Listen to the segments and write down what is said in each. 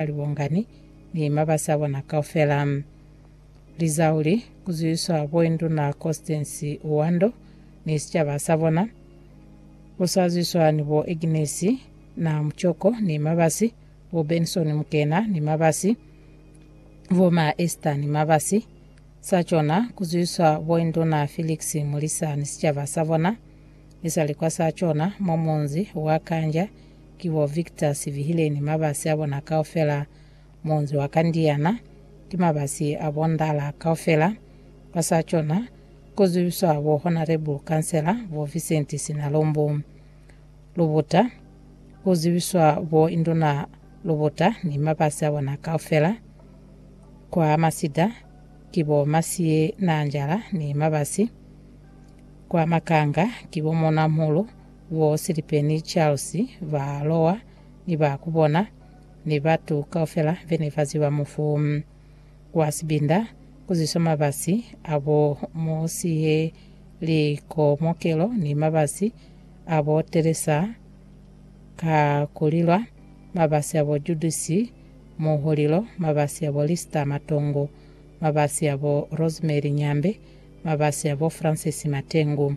ka libongani ni mabasi abona kaufela. Lizau li kuzuiswa Boinduna Constance Uwando ni sicaba sabona, bo sa zuiswa ni bo Agnes Na Muchoko ni mabasi, bo Benson Mukena ni mabasi, bo Ma Esther ni mabasi. Sa cona kuzuiswa Boinduna Felix Mulisa ni sicaba sabona, isali kwa sa cona mwa munzi wa Kanja, Ki bo Victor Sibihile ni mabasi a bona kaufela, muunzi wa Kandiana, ki mabasi a bo Ndala kaufela. Ba sa cona ku zwibiswa bo Honourable Kansela bo Vincent Sinalumbu Lubuta, ku zwibiswa bo Induna Lubuta ni mabasi a bona kaufela. Kwa masida ki bo Masiye Naanjala ni mabasi. Kwa makanga ki bo Muuna Muhulu Bo Silipe ni Charles ba lowa ni ba ku bona, ni batu kaufela be ne ba ziba mufu wa sibinda ku zwiswa mabasi a bo Mosihe, likomokelo, ni mabasi a bo Teresa ka ku lilwa, mabasi a bo Judisi, muhulilo, mabasi a bo Lister, matongo, mabasi a bo Rosemary, nyambe, mabasi a bo Francis, matengu.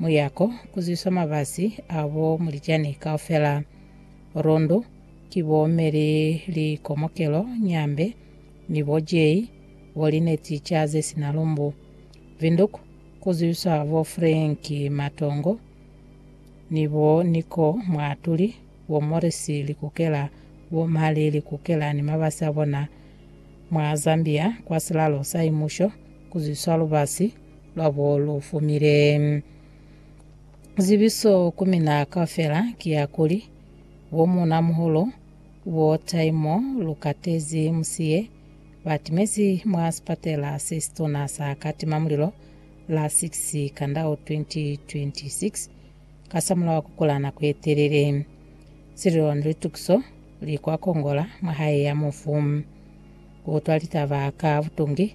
Muyako kuzwiswa mabasi a bo mulicani kaufela. Rundu ki bo me li li komokelo nyambe ni bo jei bo lineti ca ze sina lumbu. Vinduk kuzwiswa bo Frank Matongo ni bo Niko Mwaatuli, bo Morris Likukela, bo Mali Likukela ni mabasi a bona. Mwa Zambia kwa silalo sa imusho kuzwiswa lubasi. lwabo lu fumile. Zibiso ku mina kaufela ki ya kuli, Bo muuna-muhulu, bo taimo lu katezi musiye, ba timezi mwa sipatela se situna sa katima mulilo la 6 Kandau 2026 kasamulaho ku kula nako ye telele. Sililo ni litukiso li kwa kongola mwa hae ya mufu. Ku utwa litaba ka butungi,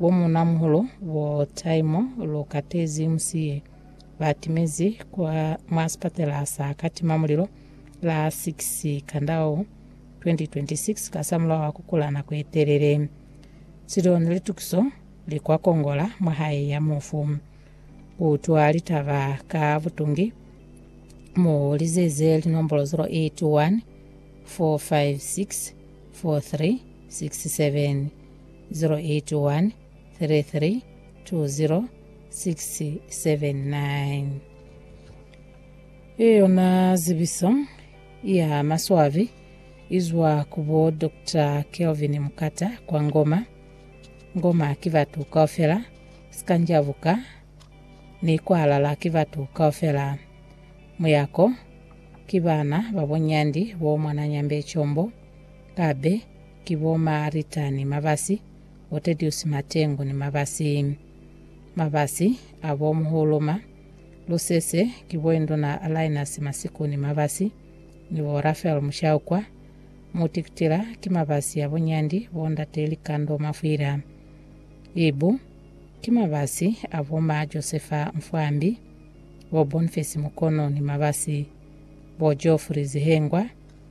Bo muuna-muhulu bo Taimo lu katezi musi ye ba timezi kwa mwa sipatela sa katima mulilo la 6 Kandau 2026 kasamulaho wa ku kula nako ye telele. Sidoon li tukiso li kwa kongola mwa hae ya mufu. Ku utwa litaba ka butungi, mu lizeze linombolo 081 456 4367. 0813320679. Ye yona zibiso ya maswabi izwa ku bo Doctor Kelvin Mkata kwa Ngoma. Ngoma ki batu kaufela, Sikanjabuka ni Kwalala ki batu kaufela, Muyako ki bana ba bo Nyandi bo mwananyambe Combo, Kabe, Ki bo Maarita ni Mabasi, bo Tediusi Matengu ni Mabasi. Mabasi, a bo Muhuluma. Lusese, ki bo Induna Lainasi Masiku ni Mabasi, ni bo Rafael Mushaukwa. Mutikitila, ki Mabasi ya bunyandi bo Ndate Likando Mafwila. Ibu, ki Mabasi a bo Ma Josefa Mfwambi, bo Bonfesi Mukono ni Mabasi, bo Geoffrey Zihengwa,